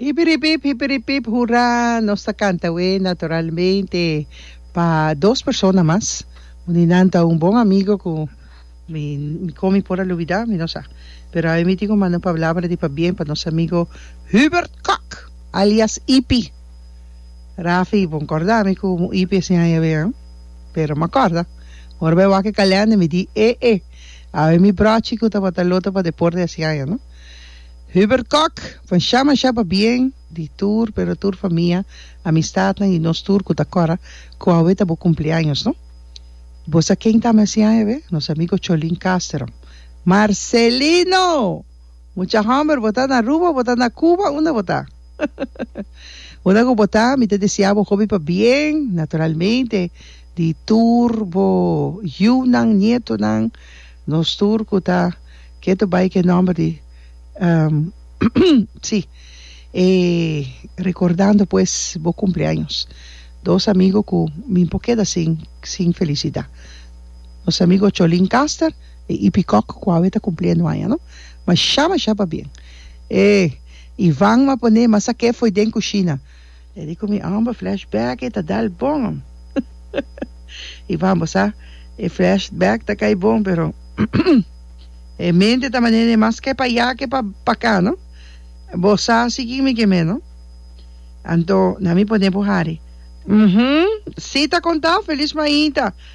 Hipiripip, hipiripip, hurá! Nos ta kanta awe naturalmente pa dos persona mas. Un di nan ta un bon amigo ku mi mi kon mi por a lubidá, mi no sa. Pero awe mi tin ku manda un pablabra di pabien pa nos amigo Hubert Kok, alias Hipi. Rafi, bon corda mi cu mo ipi ese aña be an. Pero ma corda, ora bay wak e calender mi di e e, a bay mi brochi cu tabata lota pa deporte ese aña no. Hubert Kok, bon shama shaba bien di tur pero tur famia, amistadnan y nos tur cu ta cora cu awe ta bo cumpleaños no. Bo sa ken tama ese aña be? Nos amigo Cholin Casterom. Marcelino! Mucha homber bo ta na Aruba o bo ta na Cuba unda bo ta unda cu bo ta mi ta desea bo hopi pa bien naturalmente di tur bo yiunan nietonan nos tur cu ta keto bay ke nomber di si e recordando pues bo cumpleaños dos amigo cu mi bo keda sin sin felicidad nos amigo Cholin Caster. E ipikòk ku awe ta kumpli anuaña no mashá mashá pabien. E Ivan ma pon'é masa k'é foi den kushina. E di ku mi òmber flashback e ta dal bon. Ivan bo sa e flashback ta kai bon pero e mente ta manera e mas k'é pa ya k'é pa pakà no bo sa si kin mi kem'é no anto na mi pon'é bo hari. Uhumm si ta konta feliz mainta.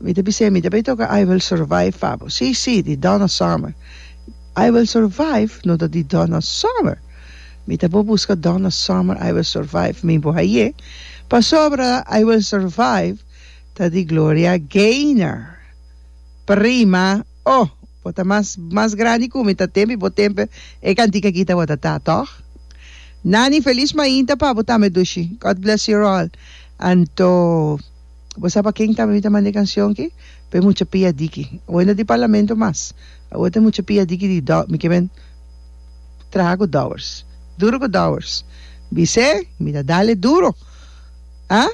Mi ta bisa, mi ta bay toca I Will Survive pa bo. Sí, sí, di Donna Summer. I Will Survive no ta di Donna Summer. Mi ta por busca Donna Summer I Will Survive mi bo haye, pasobra I Will Survive ta di Gloria Gaynor. Prima, oh, bo ta mas, mas grandi cu mi, ta tempi bo tempe e cantica aki ta word ta, toch? Nani, Feliz Mainta pa bo tambe, Dushi. God bless you all. Anto. Bo sa pa ken tambe mi ta manda e kansyon ki? Pa e mucha pia diki. Awor no tin parlamento mas. Awor ta mucha pia diki di dò. Mi ke ben traha ku dòwers. Duru ku dòwers. Bisé, mi ta dale duro. A?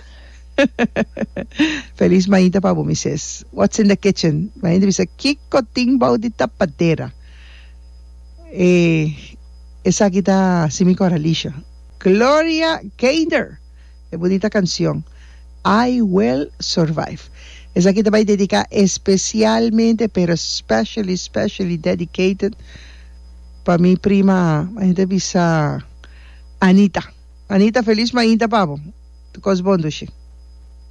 Felis mañita pa bo, mi ses. What's in the kitchen? Mi mañita bisa, Kiko tin bou di tapadera? E, esaki ta Simi Corralisha. Gloria Keinder! E bunita cancion I will survive. Esaki ta bay dedica especialmente pero specially specially dedicated pa mi prima a henter bisa Anita Anita feliz mainta pabo tu cos bon dushi.